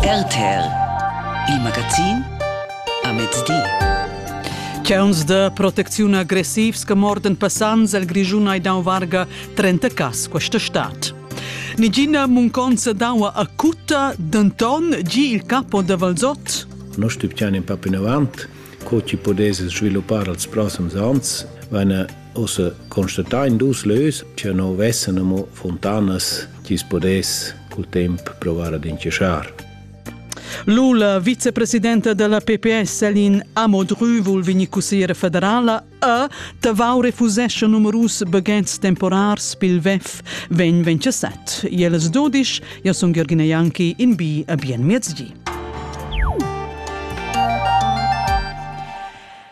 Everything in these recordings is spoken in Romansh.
RTL Il magazin a mezdi. Chauns da protecziun aggressivs che morden passants el Grischun ei dau varga 30 cas questa stad. Nigina munconza d'aua acuta, denton gi il capo da Valzot. Noi stipiamo in papin avant, co ci potesse sviluppare als prossimi anni, wenn Ussa constatain dus lös cha no vessan amo funtanas chi's podess cul temp provar ad inchaschar. Lula, vicepresidenta della PPS Elin Amodry, vul vegnir cussiera federala e Tavau refusescha numerus baghets temporars pil VEF vegn 27. Jeles dudisch, io sun Jürgen Janki in bi a bien miezgi.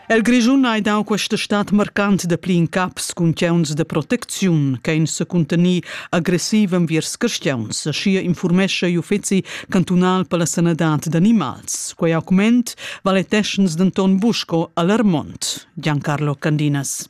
El Grischun ei dau questa stad marcant da pli in caps cun tgeuns de protecziun ch'ein secuntenir agressiv enviers cristians, aschia informescha igl uffeci cantunal per la sanadad d'animals. Quei augment valeteschens denton buc sco alarmont. Giancarlo Candinas.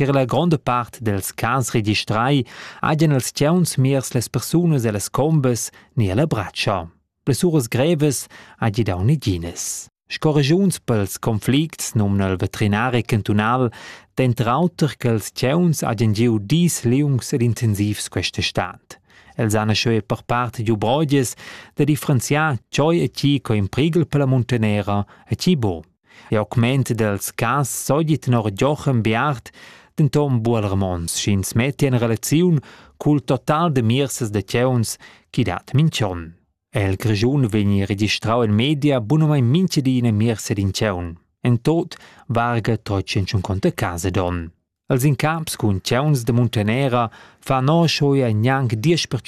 Tier la gronda part dels cas registrai hajan els tgauns miers las persunas ellas combas ni ella bratscha. Blessuras grevas hagi dau neginas. Sco regiuns pels conflicts nomna il veterinaria cantunal denter auter che els tgauns hajan giu dis liungs ed intensivs questa stat. Els han scheu per part giu brogias da differenziar tgoi e tgi co in prigel per la muntanera e tgi bo. E augment dels cas sogli tenor Joachim Beart denton bual Ramons sch'ins metti en relaziun cul total de mirsas de tgeuns chi dat minch'on. El Grischun vegni registrau in media bunamai minchedina mirsa d'in tgeun. En tot varga 350 case don. Els incaps cun tgeuns de Muntanera fa no schoia gnanc 10%